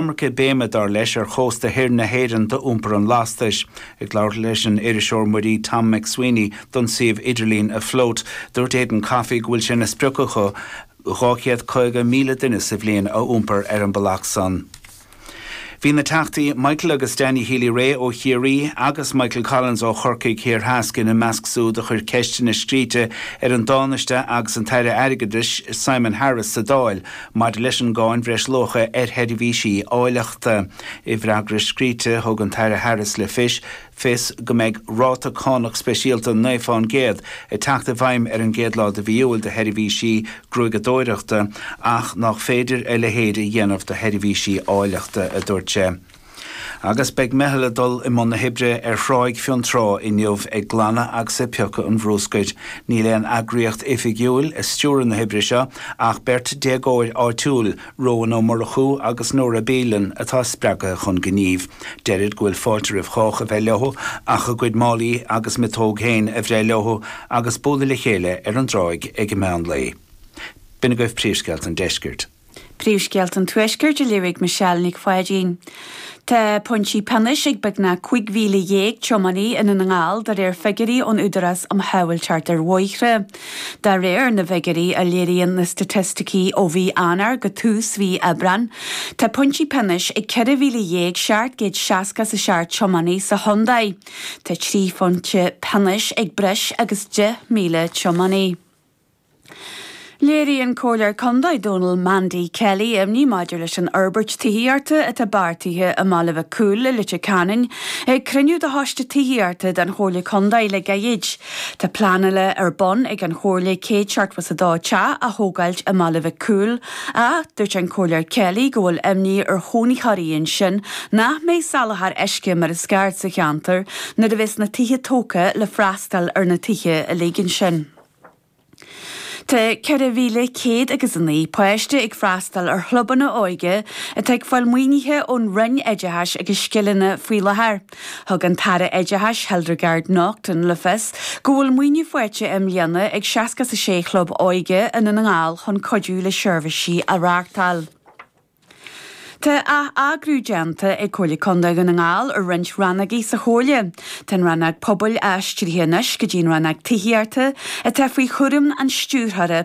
iomarca béime, dar leis, ar chósta thoir na hÉireann do iompar an lastais. Ag labhairt leis an iriseoir muirí Tom McSweeney don suíomh idirlín Afloat, dúirt Aidan Coffey go bhfuil sé ina sprioc acu 250,000 duine sa bhliain a iompar ar an mbealach san. Bhí na Teachtaí Michael agus Danny Healy Rae ó Chiarraí agus Michael Collins ó Chorcaigh Thiar Theas ina measc súd a chuir ceisteanna scríte ar an dTánaiste agus an tAire Airgeadais Simon Harris sa Dáil Maidir leis an gcáin bhreisluacha ar sheirbhísí áilleachta, i bhfreagra scríte, thug an tAire Harris le fios fios go mbeidh ráta cánach speisialta naoi fán gcéad ag teacht i bhfeidhm ar an gcéad lá de mhí Iúil do sheirbhísí gruaigeadóireachta ach nách féidir a leithéid a dhéanamh do sheirbhísí áilleachta, a dúirt sé. Agus beidh meitheal ag dul i mbun na hoibre ar Thráigh Fionntrá inniu ag glanadh agus ag piocadh an bhrúscair. Níl aon eagraíocht oifigiúil ag stiúradh na hoibre seo ach beirt déagóir áitiúil, Róan Ó Murchú agus Nóra Behan atá spreagaithe chun gnímh. Deirid go bhfuil fáilte roimh chách a bheith leo ach a gcuid málaí agus miotóg féin a bhreith leo agus bualadh le chéile ar an dtráigh ag meán lae. B'in agaibh príomhscéalta an deiscirt. Príomhscéalta an Tuaiscirt á léamh ag Michelle Nic Pháidín. Tá pointí pionóis ag beagnach 15,000 tiománaí i nDún na nGall de réir figiúirí ón Údarás um Shábháilteacht ar Bhóithre. De réir na bhfigiúirí a léiríonn na staitisticí ó mhí Eanáir go tús mhí Aibreáin, tá pointí pionóis ag 14,760 is a seacht tiománaí sa chontae. Tá trí phointe pionóis ag breis agus 10,000 tiománaí. Léirigh an Comhairleoir Contae Dónal Mandy Kelly imní maidir leis an fhorbairt tithíochta atá beartaithe i mBaile Mhic Cumhaill i Leitir Ceanainn ag cruinniú de Choiste Tithíochta den Chomhairle Contae le gairid. Tá pleanáil ar bun ag an Chomhairle céad seachtó is a dó teach a thógáilt i mBaile Mhic Cumhaill ach dúirt an Comhairleoir Kelly go bhfuil imní ar chónaitheoirí ansin nach mbeidh soláthar uisce mar is ceart sa cheantar nuair a bheas na tithe tógtha le freastal ar na tithe uilig ansin. Tá 4,100 agus a naoi páiste ag freastal ar chlubanna óige atá ag fáil maoinithe ón Roinn Oideachais agus Scileanna faoi láthair. Thug an tAire Oideachais Hildegarde Naughton le fios go bhfuil maoiniú faighte i mbliana ag seasca is a sé chlub óige i nDún na nGall chun cuidiú le seirbhísí a reáchtáil. Tá atheagrú déanta ag Comhairle Contae Dhún na nGall ar roinnt rannógaí sa Chomhairle. Tá an rannóg Pobail aistrithe anois go dtí an rannóg Tithíochta, atá faoi chúram an Stiúrthóra